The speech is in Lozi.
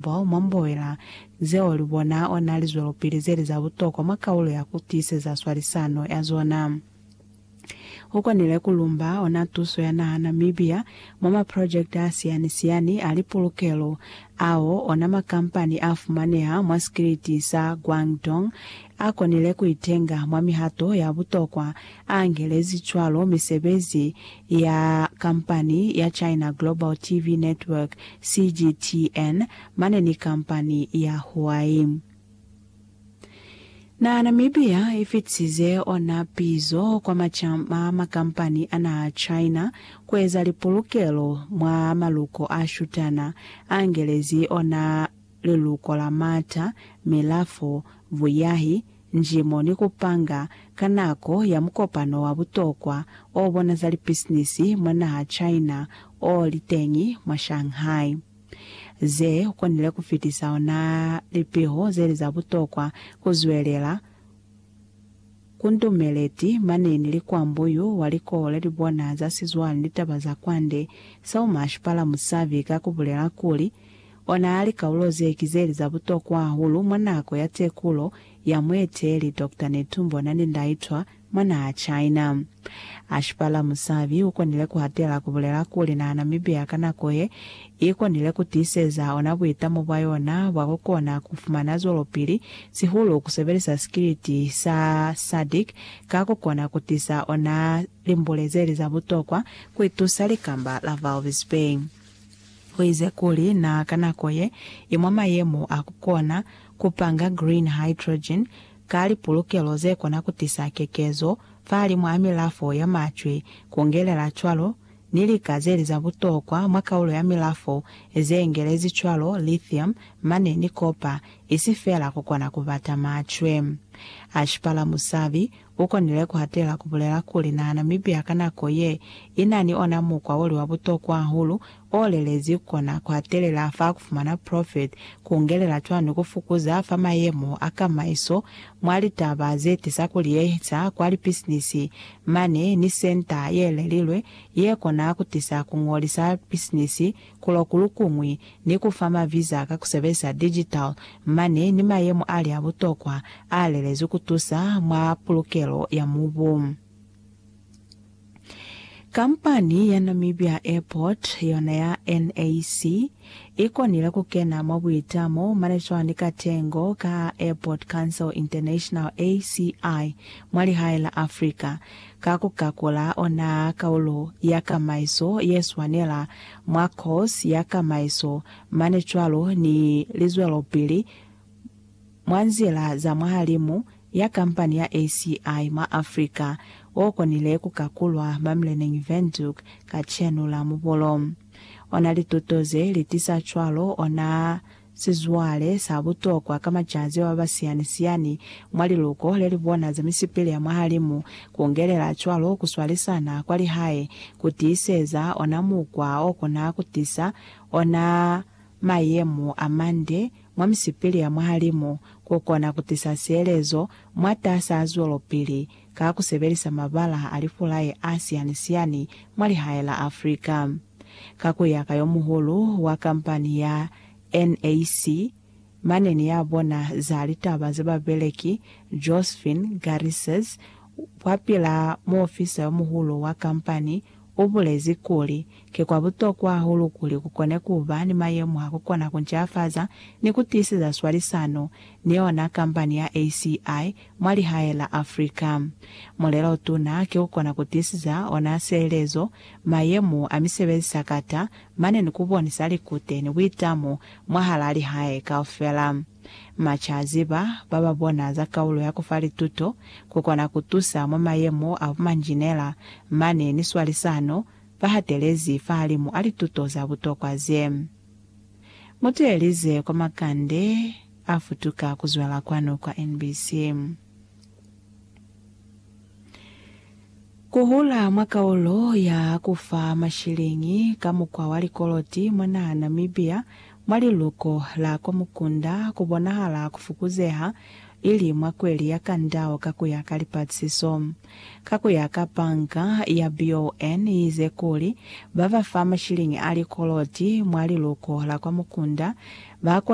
Bao mwa mboela zeo li bona ona lizwelopili zeli za butokwa mwa kaulo ya ku tiiseza swalisano ya zona. U konile ku lumba ona tuso ya naha Namibia mwa maprojekte a siyani-siyani a lipulukelo ao ona makampani a fumaneha mwa sikiliti sa Guangdong a konile ku itenga mwa mihato ya butokwa A angelezi cwalo misebezi ya kampani ya China Global TV Network, CGTN, mane ni kampani ya Huai. Naha Namibia i fitisize ona pizo kwa macama a makampani a naha China ku eza lipulukelo mwa maluko a shutana, a angelezi ona liluko la mata, milafo, vuyahi, njimo ni ku panga ka nako ya mukopano wa butokwa o bona za lipisinisi mwa naha China o li teñi mwa Shanghai. Ze konile ku fitisa ona lipiho ze li za butokwa ku zwelela ku ndumeleti mane ni li kwa mbuyu wa likole li bona za sizwale ni taba za kwande, Saumash Palamusavi ka ku bulela kuli, Ona likaulo ze ki zeli za butokwa hahulu mwa nako ya tekulo ya mueteeli Doctor Netumbo Nandi-Ndaitwah mwa naha China. Ashipala Musavi u konile ku hatela ku bulela kuli naha Namibia ka nako ye, i konile ku tiiseza ona buitamo bwa yona bwa ku kona ku fumana zwelopili, sihulu ku sebelisa sikiliti sa SADC ka ku kona ku tisa ona limbule zeli za butokwa ku itusa likamba la Walvis Bay. Uize kuli na ka nako ye i mwa mayemo a ku kona ku panga green hydrogen ka lipulukelo ze kona ku tisa kekezo fahalimu a milafo ya macwe, ku ngelela cwalo ni lika ze li za butokwa mwa kaulo ya milafo ze ngelezi cwalo lithium mane ni copper, isi fela ku kona ku bata macwe. Ashpala Musavi, U konile ku hatela ku bulela kuli na Namibia ka nako ye i na ni ona mukwa o li wa butokwa hahulu o lelezi ku kona ku hatelela fa ku fumana profit, ku ngelela cwani ku fukuza fa mayemo a kamaiso mwa litaba ze tisa ku liyehisa kwa lipisinisi mane ni senta ye lelilwe ye kona ku tisa ku ngolisa pisinisi Kulo kulukuñwi ni ku fa maviza ka ku sebelisa digital mane ni mayemo a li a butokwa a lelezwi ku tusa mwa pulukelo ya mubu. Kampani ya Namibia Airport yona ya NAC i konile ku kena mwa buitamo mane cwani ka tengo ka Airport Council International, ACI, mwa lihae la Africa, ka ku kakula ona kaulo ya kamaiso ye swanela mwa kosi ya kamaiso mane cwalo ni lizwelopili mwa nzila za mwahalimu ya kampani ya ACI mwa Afrika wo konile ku kakulwa mwa Mleneng Windhoek kacenu la Mubolo. Ona lituto ze li tisa cwalo ona Sizwale sa butokwa ka macazi ao a ba siyani-siyani mwa liluko le li bona za misipili ya mwahalimu, kungelela cwalo ku swalisana kwa lihae, ku tiiseza ona mukwa o kona ku tisa ona mayemo a mande mwa misipili ya mwahalimu, ku kona ku tisa sielezo mwatas'a zwelopili ka ku sebelisa mabala a lifulaye a siani-siani mwa lihae la Afrika. Ka ku ya ka yo muhulu wa kampani ya NAC, mane ni ya bona za litaba za babeleki, Josephine Garrissez, kwapil'a muofisa yo muhulu wa kampani, ubulezi kuli, Ki kwa butokwa hahulu kuli kukone kuba ni mayemo a kukona kuncafaza ni kutiiseza swalisano ni yona kambani ya ACI mwa lihae la Africa. Mulelo otuna ki kukona kutiiseza ona sielezo, mayemo a misebezi sakata mane ni kubonisa likute ni buitamo mwahalaa lihae kaufela. Macaziba ba ba bona za kaulo ya ku fa lituto ku kona ku tusa mwa mayemo a bumanjinela mane ni swalisano ba hatelezi fahalimu a lituto za butokwa ze. Mu teelize kwa makande a futuka ku zwela kwanu kwa NBC. Ku hula mwa kaulo ya ku fa mashiliñi ka mukwa wa likoloti mwa naha Namibia mwa liluko la kwa mukunda ku bonahala ku fukuzeha ili mwa kweli ya kandau ka ku ya ka lipatisiso. Ka ku ya ka banka ya BON ize kuli ba ba fa mashiliñi a likoloti mwa liluko la kwa mukunda ba